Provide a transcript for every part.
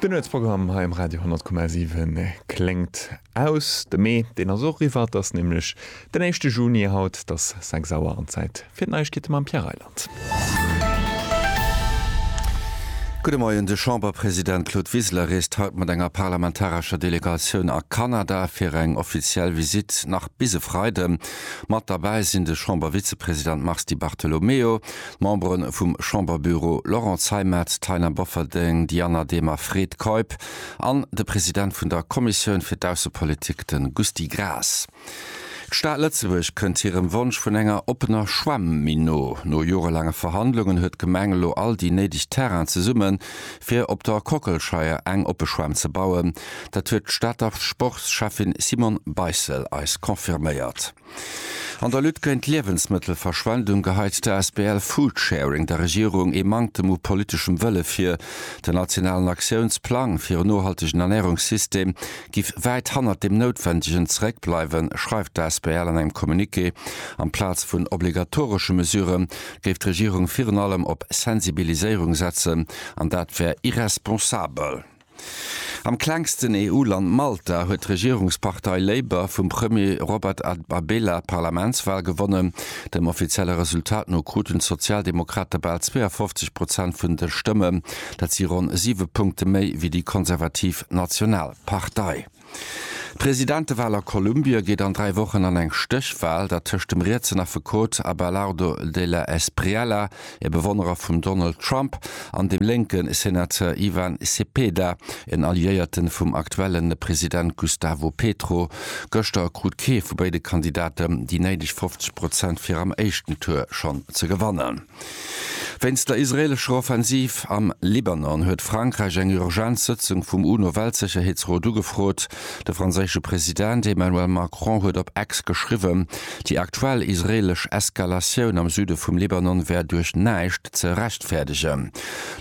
Den Nuetsprogramm hei um Radio 10,7 kléngt aus. De Mee, deen ass och eriwwer. Et ass nämlech den éischte Juni haut. Et ass 6 Auer an d'Zäit fir d'Neiegkeete mam Pierre Reyland. Gudde Moien, De Chamberpresident Claude Wiseler reest haut mat enger parlamentarescher Delegatioun a Kanada fir eng offiziell Visitt nach bis e Freide. Mat derbäi sinn de Chambervizepresident Mars Di Bartolomeo, D'Membere vum Chamberbüro Laurent Zeimet, Taina Bofferding, Diana Demer, Fred Keup an de President vun der Kommissioun fir d'Aussepolitik, de Gusty Graas. D'Stad Lëtzebuerg kënnt hirem Wonsch vun enger oppener Schwämm méi no. No jorelaange Verhandlungen huet d'Gemeng elo all déi néideg Terrainen zesummen, fir op der Kockelscheier eng oppe Schwämm ze bauen. Dat huet d'Stater Sportscheffin Simone Beissel eis confirméiert. An der Lutte géint d'Liewensmëttelverschwendung geheit d'Asbl Foodsharing der Regierung ee Manktem u politeschem Wëlle vir. Den nationalen Aktiounsplang fir en nohaltegen Ernärungssystem giff wäit hannert deem Noutwendegen zeréckbleiwen, schreift d'Asbl an engem Communiqué. Amplaz vun obligatoresche Mesure géif d'Regierung virun allem op Sensibiliséierung setzen, an dat wär irresponsabel. Am klengsten EU-Land Malta huet d'Regierungspartei Labour vum Premier Robert Abela d'Parlamentswal gewonnen. Dem offizielle Resultat no kruten d'Sozialdemokrate bal 52 Prozent vun de Stëmmen. Dat si ronn siwe Punkte méi wéi déi konservativ Nationalpartei. D'Presidentewal a Kolumbie geet an dräi Wochen an eng Stéchwal, dat tëscht dem rietsen Affekot Abelardo de la Espriella, e Bewonnerer vum Donald Trump, an dem lénke Senateur Ivan Cepeda, en Alliéierte vum aktuelle President Gustavo Petro. Gëschter krut kee vu béide Kandidaten déi néideg 50 Prozent fir am éischten Tour schonn ze gewannen. Wéinst der israeelescher Offensiv am Libanon huet Frankräich eng urgent Sëtzung vum UNO-Weltsécherheetsrot ugefrot. De franséische President Emmanuel Macron huet op X geschriwwen, déi aktuell israeelesch Eskalatioun am Süde vum Libanon wär duerch näischt ze rechtfäerdegen.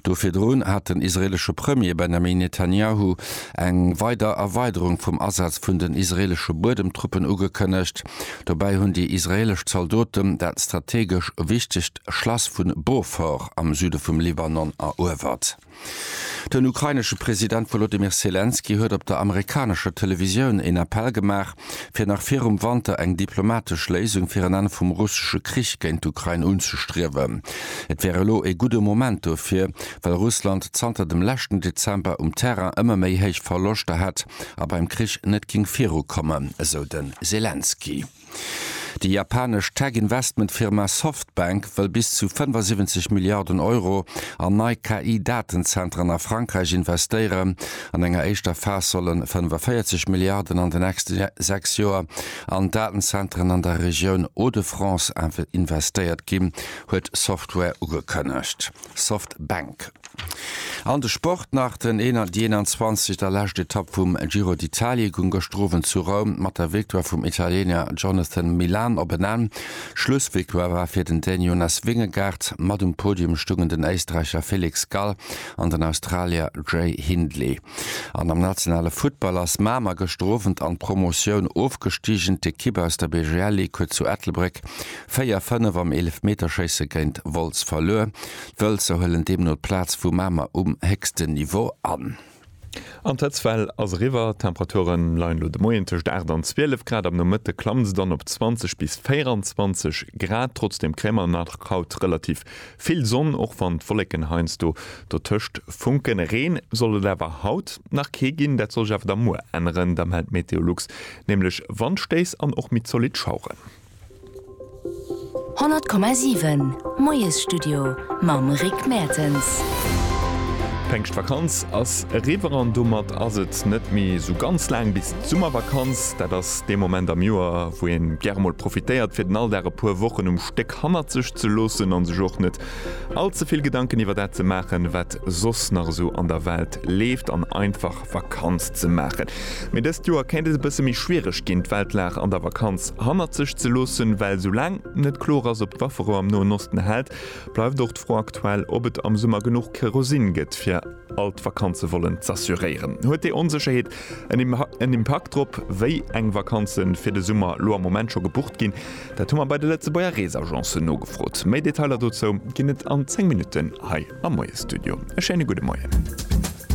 Do virdrun hat den israeelesche Premier Benjamin Netanjahu eng weider Erweiderung vum Asaz vun den israeelesche Buedemtruppen ugekënnegt. Dobäi hunn déi israeelesch Zaldoten dat strategesch wichtegt Schlass vu Beaufort am Süde vum Libanon eruewert. Den ukrainesche President Wolodymyr Selenskyj huet op der amerikanescher Televisioun een Appell gemaach, fir nach virum Wanter eng diplomatesch Léisung fir en Enn vum russesche Krich géint d'Ukrain unzestriewen. Et wär elo ee gudde Moment dofir, well Russland zanter dem leschten Dezember um Terrain ëmmer méi héich Verloschter hätt, a beim Krich net géing virukommen, esou de Selenskyj. Déi japanesch Tech-Investment-Firma Softbank wëll bis zu 75 Milliarden Euro an nei KI-Datenzentren a Frankräich investéieren. An enger éischter Phas solle 45 Milliarden an den nächste sechs Joer an Datenzentren an der Regioun Hauts-de-France investéiert ginn, huet Software ugekënnegt. Softbank. An de Sport nach, Déi 21 der lescht Etapp vum Giro d'Italia goung gëschter Owend zu Roum mat der Victoire vum Italiener Jonathan Milan op en Enn. Schlussvictoire war fir den Dän Jonas Vingegaard. Mat um Podium stungen den Éisträicher Felix Gall an den Australier Jay Hindley. An am nationale Futtball ass Mamer gëschter Owend an d'Promotioun ofgestigen. D'Ekipp aus der BGL League huet zu Ettelbréck 4, 5 am Eelefmeterschéisse géint Wolz verluer. D'Wëlzer huelen deemno d'Plaz vu Mamer um héchsten Niveau an. An d'Hëtztwell ass eriwwer. D'Temperature leien elo de Moien tëscht 8 an 12 Grad. Am Nomëtte klamme se dann op 20 bis 24 Grad. Trotzdeem kréie mer nach haut relativ vill Sonn, och wann d'Wolleken heiansdo dotëscht funken. Reen soll et awer haut nach kee ginn. Dat soll sech awer da muer änneren. Da mellt Meteolux nämlech Wandstéiss an och méi zolidd Schaueren. 100,7 Moiesstudio mam Rick Mertens. D'Péngschtvakanz ass eriwwer an domat ass et net méi esou ganz laang bis d'Summervakanz. Dat ass dee Moment am Joer, wou ee gäre mol profitéiert, fir den Alldag e puer Wochen um Stéck hannert sech ze loossen an sech och net all ze vill Gedanken iwwer dat ze maachen, wat soss nach esou an der Welt leeft an einfach op Vakanz ze maachen. Mee dëst Joer kéint et e bësse méi schwiereg ginn, d'Weltlag an der Vakanz hannert sech ze loossen, well sou laang net kloer ass, ob d'Wafferou am Noen Osten hält, bleift och d'Fro aktuell, ob et am Summer genuch Kerosin gëtt, fir all d'Vakanze wollen z'assuréieren. Huet déi Onsécherheet en Impakt drop, wéi eng Vakanze fir de Summer elo am Moment scho gebucht ginn? Dat hu mer bei de Lëtzebuerger Reesagencen nogefrot. Méi Detailer dozou ginn et an 10 Minutten hei am Moiesstudio. E schéine gudde Moien.